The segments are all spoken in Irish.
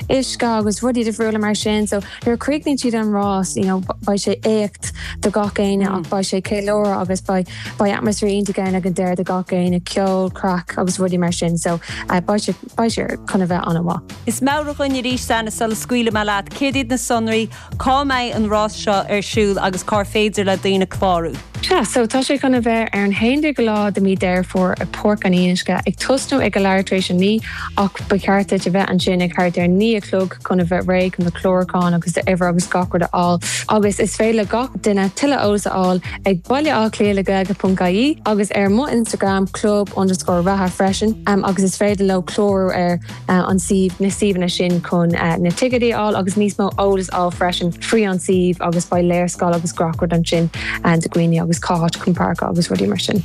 uisce agus rudaí difriúla mar sin so nuair a críochnaíonn siad an rás you know beidh sé éacht do gach éinne mm. ach beidh sé ceiliúradh agus beidh atmasféar iontach ann ag an deireadh do gach éinne ceol craic agus rudaí mar sin so uh, beidh sé chun a bheith an-mhaith. Is meabhraigh dúinn arís, Anna, sula scaoilfidh mé leat céard iad na sonraí Cá mbeidh an rás seo ar siúl agus cár féidir le daoine clárú? Sea, so tá sé chun a bheith ar an haon déag lá de mí Dheireadh Fómhair i Páirc an Fhionnuisce, ag tosnú ag a leath tar éis a naoi ach ba cheart duit a bheith ansin ag thart ar a naoi a chlog chun a bheith réidh chun do chlárúchán agus d'uimhir agus gach rud a fháil agus is féidir le gach duine tuilleadh eolas a fháil ag Baile Átha Cliath le Gaeilge.ie agus ar mo Instagram club underscore reatha freisin agus is féidir leo clárú ar an suíomh, na suíomhanna sin chun na ticéid a fháil agus níos mó eolas a fháil freisin faoi an suíomh agus beidh léarscáil agus gach rud ansin do dhaoine agus cá háit chun páirceáil agus rudaí mar sin.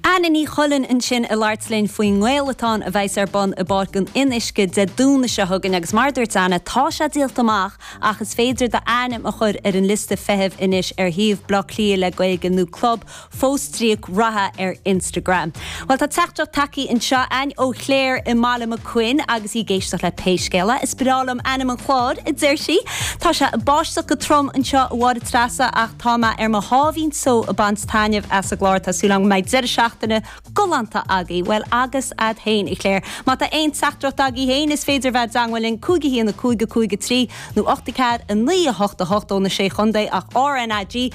Anna Ní Chuilinn ansin ag labhairt linn faoin nGaelatón a bheas ar bun i bPáirc an Fhionnuisce Dé Domhnaigh seo chugainn agus mar a dúirt Anna, tá sé díolta amach ach is féidir d'ainm a chur ar an liosta feithimh anois ar shuíomh Bleá Cliath le Gaeilge nó Club fostríoc reatha ar Instagram. Bhuel, tá teachtaireacht tagthaí anseo againn ó Chléir i mBaile Mac Cuinn agus í ag éisteacht le Pé Scéal é, is breá liom ainm an chláir, a deir sí. Tá sé ag báisteach go trom anseo, a Mháire Treasa, ach tá mé ar mo sháimhín só ag baint taitneamh as an gclár. Tá súil agam go mbeidh deireadh seachtaine galánta agaibh. Bhuel, agus a'd féin, a Chléir. Má tá aon teachtaireacht agaibh féin, is féidir a bheith i dteagmháil linn, cúig a haon a cúig a cúig a trí, nó ocht a ceathair a naoi a hocht a hocht ó na Sé Chontae at RnaG.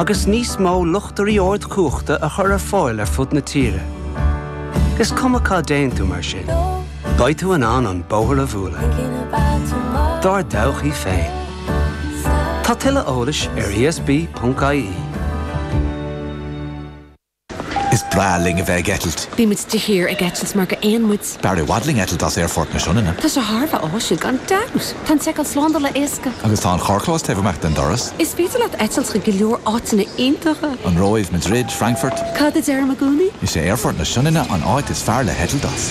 agus níos mó luchtairí ardchumhachta a chur ar fáil ar fud na tíre. Is cuma cá dtéann tú mar sin, beidh tú in ann an bóthar a bhualadh dár dtodhchaí féin. Tá tuilleadh eolais ar esb.ie. Is breá linn a bheith ag eitilt. Bímid de shíor ag eitilt mar gur éin muid. B'fhearr i bhfad linn eitilt as Aerfort na Sionainne. Tá sé thar a bheith áisiúil, gan dabht. Tá an tseiceáil slándála éasca. Agus tá an carrchlós taobh amuigh den doras. Is féidir leat eitilt chuig go leor áiteanna iontacha. An Róimh, Madrid, Frankfurt. Cad a deirim i gcónaí? Is é Aerfort na Sionainne an áit is fearr le heitilt as.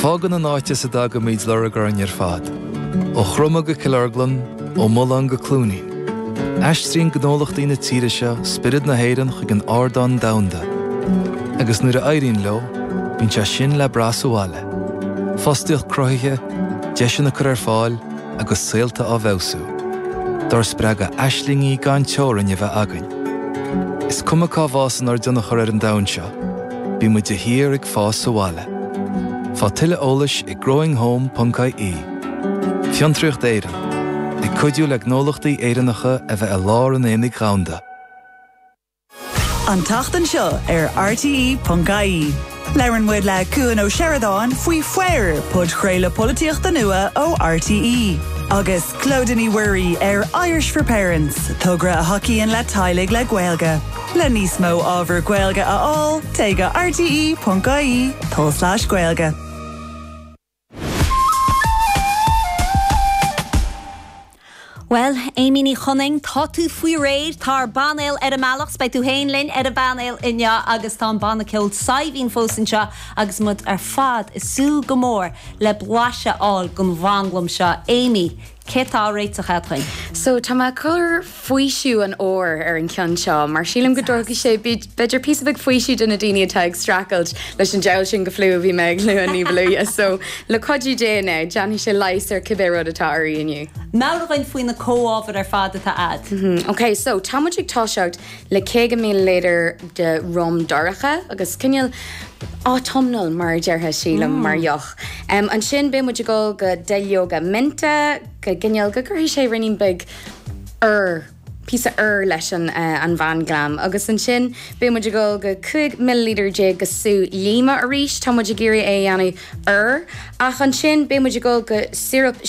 Fágann an áit as a dtagaimid lorg orainn ar fad, ó Chroma go Cill Orglan, ó Mullán go Cluainín. Aistríonn gnólachtaí na tíre seo spiorad na hÉireann chuig an ardán domhanda, agus nuair a éiríonn leo, bíonn sé sin le brath sa bhaile, fostaíocht cruthaithe, deiseanna curtha ar fáil agus saolta á bhfeabhsú. Dár spreagadh aislingí gan teorainn a bheith againn. Is cuma cá bhfásann ár dtionchar ar an domhan seo, Bíonn muid de shíor ag fás sa bhaile. Faigh tuilleadh eolais ag growinghome.ie. Fiontraíocht Éireann, ag cuidiú le gnólachtaí Éireannacha a bheith i lár an aonaigh dhomhanda. An tseachtain seo ar RTÉ.ie, labhraíonn muid le Cuan Ó Seireadáin faoi Foir, podchraoladh polaitíochta nua ó RTÉ, agus Clodagh Ní Mhuirí ó Irish for Parents, togra a thacaíonn le teaghlaigh le Gaeilge. Le níos mó ábhar Gaeilge a fháil, téigh go rte.ie/gaeilge. Bhuel, Amy Ní Chonaing, tá tú faoi réidh, tá ár bpainéal ar an mbealach, 's beidh tú féin linn ar an bpainéal inniu agus tá an banna ceoil Saidhbhín fós anseo agus muid ar fad ag súil go mór le blaiseadh a fháil den mhanglam seo. Amy, Céard atá á réiteach agat? So, tá mé ag cur faoiseamh an óir ar an cheann seo, mar sílim go dtabharfaidh sé, b'fhéidir, píosa beag faoisimh do na daoine atá ag streachailt leis an diabhal sin de fliú a bhí mé ag lua ní ba luaithe. So, le cuidiú Dé, now, déanfaidh sé leigheas ar cibé rud atá oraibh inniu. Meabhraigh dúinn faoi na comhábhair ar fad atá agat. Mm-hmm. OK, so, tá muid ag toiseacht le 50 milliliter de rum dorcha, agus cineál autumnal, mar a déarfá, sílim, mar mm. dheoch. Ansin beidh muid ag dul do duilleoga mint, go gcineál, go gcuirfidh sé ruainnín beag úr, píosa úr leis an an mhanglam. Agus ansin beidh muid ag dul go 15 milliliter de sú líoma arís, tá muid ag iarraidh é a dhéanamh úr, ach ansin beidh muid ag dul do síoróip